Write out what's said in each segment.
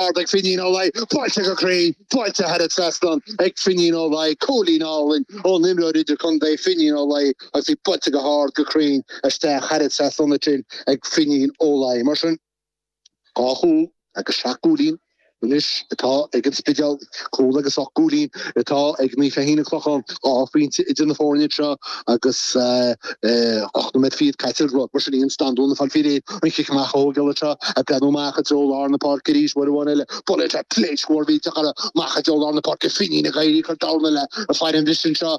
Ard ag Finín Ó Laoi, buailte go cruinn, buailte thar an trasnán ag Finín Ó Laoi, cúilín álainn ón imreoir idirchontae Finín Ó Laoi agus í buailte go hard go cruinn isteach thar an trasnán ansin ag Finín Ó Laoi. Mar sin, dhá chúl agus seacht gcúilín anois atá ag an Spidéal. Cúl agus ocht gcúilín atá ag Naomh Feichín an Chlocháin, dhá phointe idir na foirne seo agus ocht nóiméad fichead caite ar an gclog. Mar sin Ian Standún ag fáil faoi réir an cic amach a thógáil anseo, ag breathnú amach i dtreo lár na páirce arís, uair amháin eile, buailte, pléasc mhór mhillteach amach i dtreo lár na páirce, Finín ag éirí ag cur domhain eile ar fad ar an bhliain seo.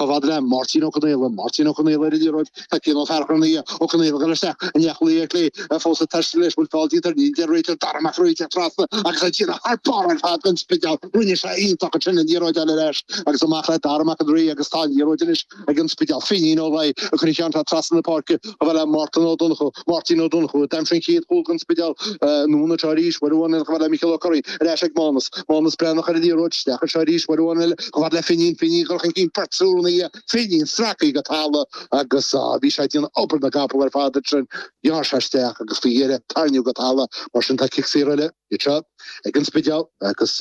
Chomh fhad le Máirtín Ó Conaola, Máirtín Ó Conaola ar an liathróid, tá Cian Ó Fearchair ina aghaidh, Ó Conaola ag goil isteach i neach luí ar chlé, fós ag taisteal leis, bhfuil feall déanta air, níl a deir an réiteoir, Dara Mac an Rí trasna agus ag déanamh thar barr ar fad don Spidéal, rinne sé iontach ansin an liathróid a fháil ar ais agus amach le Dara Mac an Rí agus tá an liathróid anois ag an Spidéal, Finín Ó Laoi a chuirfidh ceann atá trasna na páirce. chomh fhad le Máirtín Ó Donnchú, Máirtín Ó Donnchú, a d'aimsigh an chéad chúl don Spidéal, anonn trasna arís, uair amháin eile, chomh fhad le Mícheál Ó Curraoin, ar ais ag Mánas, Mánas Breathnach ar an liathróid isteach anseo arís, uair amháin eile, chomh fhad le Finín, Finín ag dul chun cinn, Port Súr an Fhia, Finín sractha go talamh, agus á, bhí sé ag déanamh obair na gcapall ar fad, ansin ghearr sé isteach agus faoi dheireadh, tarraingíodh go talamh, mar sin tá cic saor eile, anseo, ag an Spidéal, agus.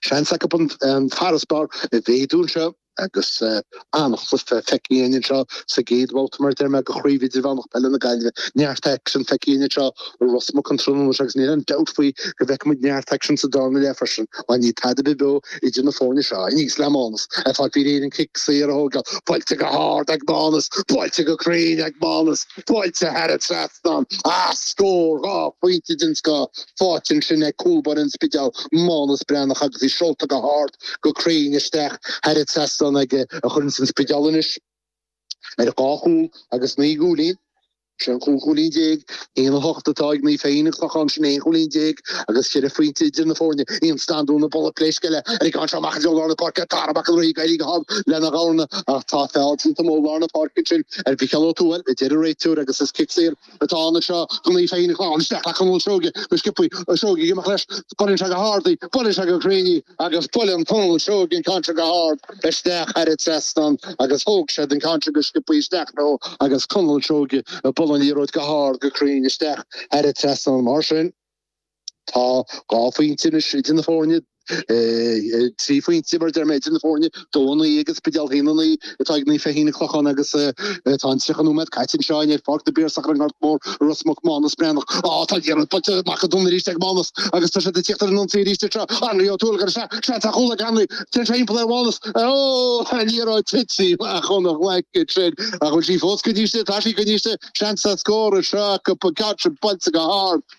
Seans acu an farasbarr a mhéadú anseo agus an-chluiche feicthe againn anseo sa gcéad bhabhta mar a deir mé de Chraobh Idirmheánach Peile na Gaillimhe. Neart aicsin feicthe againn anseo i Ros Muc an tráthnóna seo agus níl aon dabht faoi go bhfeicfidh muid neart aicsin sa dara leath freisin. Mar níl tada ar bith beo idir na foirne seo aníos le Mánas ag fáil faoi réir an cic saor a thógáil, buailte go hard ag Mánas, buailte go cruinn ag Mánas. buailte thar an trasnán agus scór dhá phointe den scoth faighte ansin ag cúl báire an Spidéil, Mánas Breathnach agus í seolta go hard go cruinn isteach thar an trasnán aige cuireann sin an Spidéal anois ar dhá chúl agus naoi gcúilín. Sin cúig chúilín déag, 1-8 atá ag Naomh Feichín an Chlocháin, sin 11 chúilín agus ceithre phointe idir na foirne. Ian Standún ag bualadh pléisc eile ar an gceann seo amach i dtreo lár na páirce, Dara Mac an Rí ag éirí a thug lena ghabharna ach tá feall déanta amuigh i lár na páirce ansin Ar Mhícheál Ó Tuathail, a deir an réiteoir agus is cic saor atá ann anseo, do Naomh Feichín an Chlocháin isteach le Conall Seoighe go sciobtha, an Seoigheach ag imeacht leis. Buaileann sé go hard í, buaileann sé go cruinn í. Agus buaileann Conall Seoighe an ceann sin go hard isteach thar an trasnán agus thóg siad an ceann sin go sciobtha isteach leo agus Conall Seoighe a bhuaileann an liathróid go hard go cruinn isteach thar an trasnán. Mar sin. Tá dhá phointe anois idir na foirne, trí phointe mar a deir mé, idir na foirne, dó a naoi ag an Spidéal, a haon a naoi atá ag Naomh Feichín an Chlocháin agus tá an 30 nóiméad caite anseo ar Pháirc na bPiarsach ar an nGort Mór i Ros Muc, Mánas Breathnach. Á, tá an liathróid buailte amach ansin arís ag Mánas agus tá siad ag tíocht ar an ionsaí arís anseo. Anraí Ó Tuathail ar sé, seans ar chúl ag Anraí, téann sé timpeall ar Mhánas. Ó, tá an liathróid tite amach óna ghlaic ansin. Ach bhfuil sí fós coinnithe istigh? Tá sí coinnithe istigh. Seans ar scór anseo acu, Paul Gartran, buailte go hard.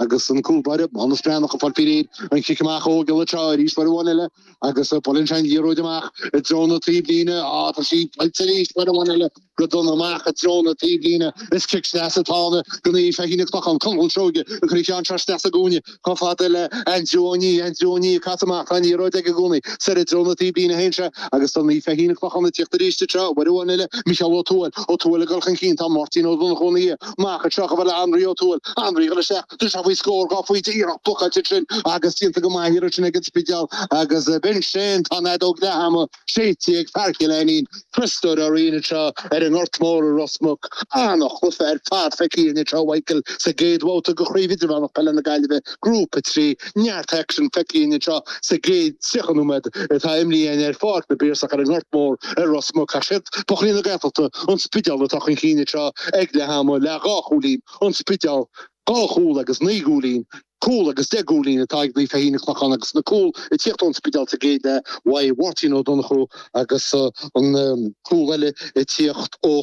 agus an cúl báire, Maghnus Breathnach, ag fáil faoi réir an chic amach a thógáil i dtreo arís, bhur bhun eile, agus buaileann sé an liathróid amach i dtreo na taobhlíne, á, tá sí faighte arís, buailte go dona amach i dtreo na taobhlíne, is cic sleasa atá ann do Naomh Feichín an Chlocháin, Conall Seoige, cuireann sé trasna sa gcúinne chomh fada le Aindriú Ó Nia, Aindriú Ó Nia ag casadh amach, tá an liathróid aige i gcónaí, soir i dtreo na taobhlíne féin anseo, agus tá Naomh Feichín an Chlocháin ag tíocht arís i dtreo, bhur bhun eile, Mícheál Ó Tuathail, Ó Tuathail ag dul chun cinn, tá Máirtín Ó Donnchú ina dhiaidh, amach anseo chomh fada le Anraí Ó Tuathail, Anraí ag dul isteach de seo faoi scór a fháil, iarracht blocáilte ansin agus déanta go maith an iarraidh sin ag an Spidéal agus b'in sin tá an fheadóg leath ama séidte ag fear Chill Ainnín, Christopher Ó Riain anseo ar an nGort Mór i Ros Muc, an-chluife ar fad feicthe anseo, a Mhichael, sa gcéad bhabhta de chraobh idirmheánach Peile na Gaillimhe, Grúpa a trí. Neart aicsin feicthe anseo sa gcéad tríocha nóiméad atá imrithe ar Pháirc na bPiarsach ar an nGort Mór i Ros Muc ach siad buachaillí na Gaeltachta, An Spidéal, atá chun cinn anseo ag leath ama le dhá chúilín, An Spidéal, dhá chúl agus naoi gcúilín, cúl agus deich gcúilín, atá ag Naomh Feichín an Chlocháin, agus na cúil ag tíocht ón Spidéal sa gcéad leath, uaidh Mháirtín Ó Donnchú agus an cúl eile ag tíocht ó